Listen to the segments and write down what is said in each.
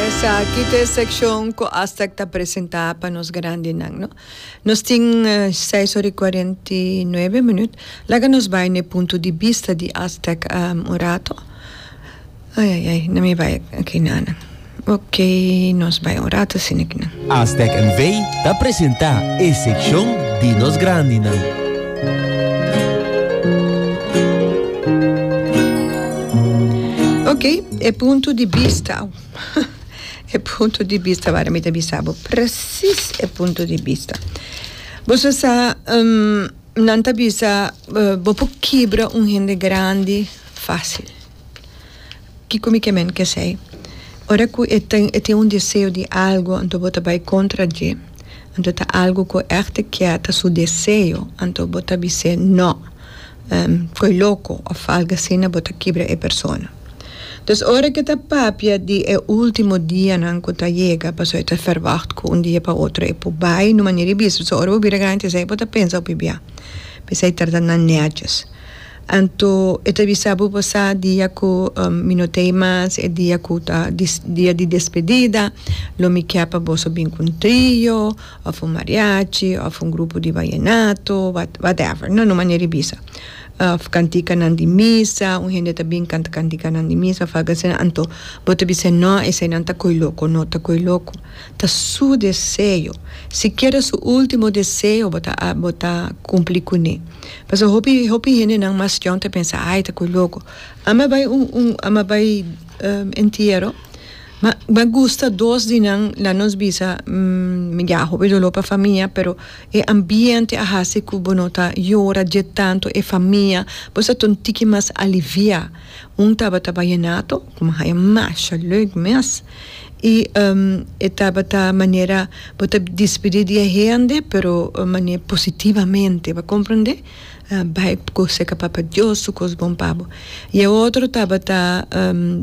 Esaki ta e sekshon ku Astag ta presentá pa nos grandinan, no. Nos tin seis ora i kuarenta i nuebe minut. Laga nos bai na e punto di bista di Astag un rato. Ayayay, no mi bai akinanan. Oke, nos bai un rato asina akinan. Astag NV ta presentá e sekshon di nos grandinan. Ok e punto di bista aw e punto di bista wak mi ta bisa bo presis e punto di bista boso sa nan ta bisa bo por kibra un hende grandi facil. Kiko mi ke men ke esei? Ora ku e tin e tin un deseo di algu anto bo ta bai kontra dje, anto ta algu ku e èkte kier ta su deseo anto bo ta bis'é nò, koe loko òf algu asina bo ta kibra e persona. Entonces ora ke ta papia di e ultimo dianan ku ta yega pasobra e ta verwagt ku un dia pa otro e por bai no manera i bisa so ora bo bira grandi esei bo ta pensa hopi bia bisai tarda nan nèdjes. Anto e ta bisa bo pasá dia ku mi no ta ei mas, e dia ku ta di dia di despedida, lo mi kier pa boso bin ku un trio òf un mariachi òf un grupo di vayenato, what whatever no, no manera e bisa. Òf kantikanan di misa, un hende ta bin kanta kantikanan di misa òf algu asina, anto bo ta bisa nò eseinan ta ko'i loko, no ta ko'i loko, ta su deseo, sikiera su último deseo bo ta bo ta kumpli kuné. Pasobra hopi hopi hendenan mas jòn ta pensa, Ai, ta koe loko. Ami a bai un un ami a bai entiero, ma m'a gusta dos di nan la nos bisa ya hopi doló pa famia, pero e ambiente a hasi ku bo no ta yora dje tantu e famia, bo sa ta un tiki mas aliviá. Un tabata Vallenato ku mi haña masha lèk mes. I e tabata manera bo ta despedí di e hende, pero manera positivamente, bo a komprendé? Bai gosa ku Papa Dios su kos bon pa bo. I e otro tabata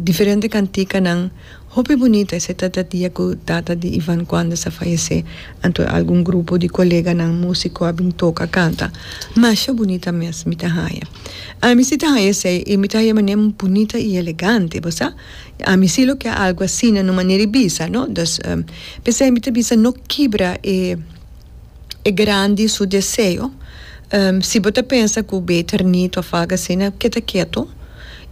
diferente kantikanan, hopi bunita. Esei ta e dia ku tata di Ivan Cuanda sa fayesé, anto algun grupo di koleganan músiko a bin toka kanta. Masha bunita mes mi ta haña. Ami si ta haña esei, mi ta haña manera bunita i elegante, bo sa. I ami si lo ke algu asina no manera i bisa, no. Dus, p'esei mi ta bisa no kibra e e grandi su deseo. Si bo ta pensa ku beter nit òf algu asina keda ketu.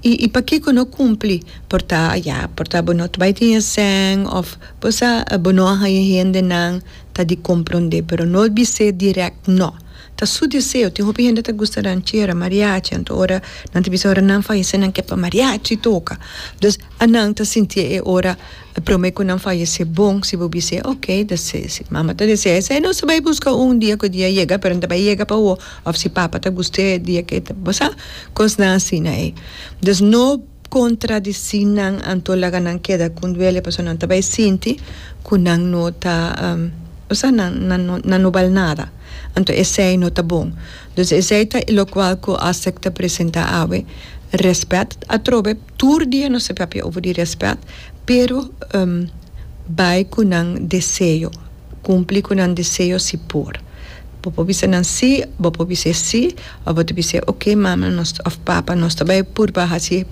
I i pakiko no kumpli? Por ta, ya, por ta bo no ta bai tin e sèn òf bo sa bo no a haña hendenan ta di komprondé, pero no bis'é dirèkt no. Ta su deseo. Tin hopi hende ta gusta ranchera, mariachi, anto ora nan ta bisa ora nan fayese nan ke pa mariachi toka. Dus a nan ta sinti e ora prome ku nan fayese bon si bo bis'e ok ta si si mama ta desea esei nos ta bai buska un dia ku e dia yega pero ta bai yega pa bo òf si papa ta gust'e dia ke ta pasa kosnan asina ei. Dus no. contradici nan anto laga nan keda con duele pasobra nan ta bay sinti cu nan no ta osea nan no bal nada anto esey no ta bon dus esey ta y locual cu Asec ta presenta awe respet atrobe tur dia nos ta papia over di respet pero bay cu nan deseo cumpli cu nan deseo si por. Bo por bisa nan sí, bo por bis'é sí, òf bo ta bis'é oké, mama nos òf papa nos ta bai purba hasi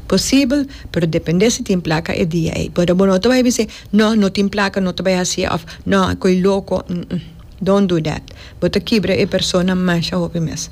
posibel, pero dependé si tin plaka e dia ei. Pero bo no ta bai bis'é nò, no tin plaka, no ta bai hasié òf nò ko'e loko, nm, don't do that. Bo ta kibra e persona masha hopi mes.